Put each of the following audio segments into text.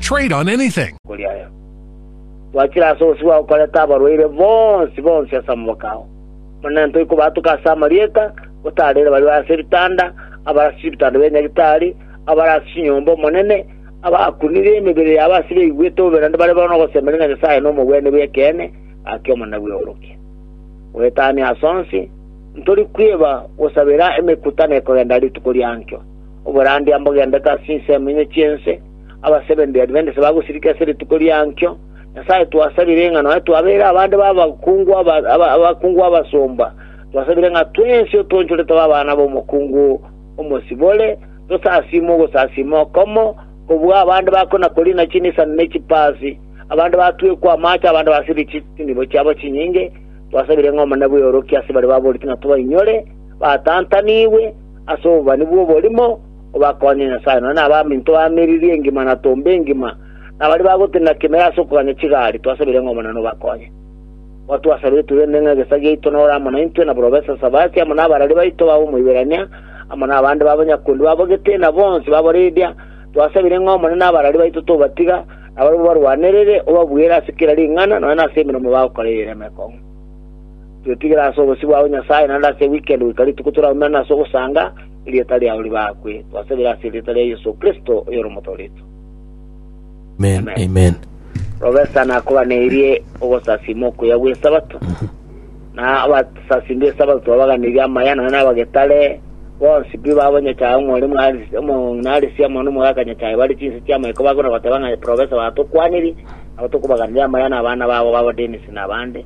Trade on anything. Kori aya, Twachire ase obosibwa gokoreta abarwaire bonsi bonsi ase amaboko ao, Omonene toikobatuka ase amarieta, gotaarire baria bare ase ebitanda, abare ase chibitanda bia nyagitari, abare ase chinyomba Omonene, abakunire emebere yabo ase beigwete obobe naende bare bono ogosemeria ng'a Nyasae nomobwene bw'ekeene, gaki Omonene bweorokia. Goetania ase onsi, ntori kwiba gosabera emekutano ekogenda rituko riankio, oborandia mbogendete ase chinsemo inye chi'ense, Aba Seventh Day Adventist bagosirika ase rituko riankio, Nyasae twasabire ng'a nonya twabeire abande b'abakungu abakungu abasomba, twasabire ng'a twensi otoonchore tobe abana b'omokungu omosibore, tosasiimwe ogosasiima okomo, kobua abande bakona korina chinisani ne chipaasi, abande batwekwa amaache, abande basirire chinibo chiabo chinyinge, twasabire ng'a Omonene bweorokie ase baria baboreti ng'a tobainyore, batantanigwe ase obobani bw'oborimo, obakoonye Nyasae, nonya nabaminto ba meriri engima na tomba engima, na baria bagotenena kemerero ase okoganya chigari, twasabire ng'a Omonene obakoonye. Igo twasabire togende ng'a egesa giaito nore amo naintwe, na borobe Sasabasi amo nabarari baito babe Omoiberania, amo nabande b'abanyakundi babo gete, na bonsi b'Abaridia. Twasabire ng'a Omonene abarari baito tobatiga, na barabwo barwanerere, obabuere ase kera ring'ana, nonya nase emeremo bagokora eyio ere emekong'u. Twetigire ase obosio bwao, Nyasae, naende ase ewikend goika rituko toraumere nase ogosanga, Erieta riao ribakwe, twasabire ase erieta ria Yeso Kristo, oyore Omotooretwe. Amen, amen. Professor nakobanerie ogosasima okuya gw'Esabato, na abasasimi b'Esabato twabaganirie amaya, nonya na abagetare bonsi pi babo Nyachae omore mwarisi- omo- narisi amo n'omogaka Nyachae bare chinse chi'amaiko bakona goteba ng'a Professor batokwaniri, nabo tokobaganiria amaya na abana babo babo Dennis na abande.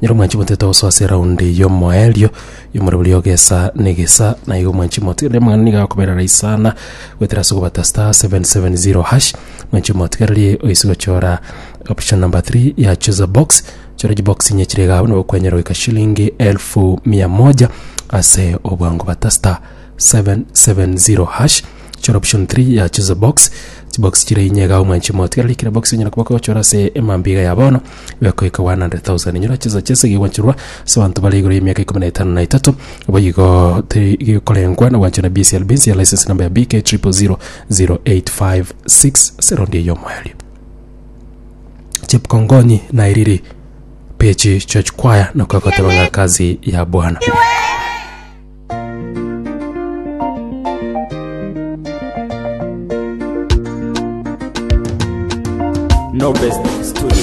Nyiri omwanchi motete ogosoa ase eraundi y'omoerio y'omorero boria ogesa negesa, na igo omwanchi motige onde omong'ina nigo akoberera isana goetera ase ogobata star 770 hash omwanchi omotigererie oise gochora option number three ya chooser box chora chibox inye chire iga abwo nigo okwenyora goika shilingi elfu mia moja ase obwango bata star 770 hash chora option three ya chooser box chibox chire inye iga abwo omwanchi omotigererie kera box onyara koba okochora ase emambia iga ya bono bekoika 100,000. Inyora chinsa chese egigwancherwa ase abanto bare igoro y'emiaka ikomi na etano na etato, boigo teri gekorengwa na gwancherwa na BCLB ense ya license number ya BK 000856 ase raundi eye y'omoerio. Chepkongonyi nairiri pechi church choir nako agoteba ng'a kazi ya bwana No best studios.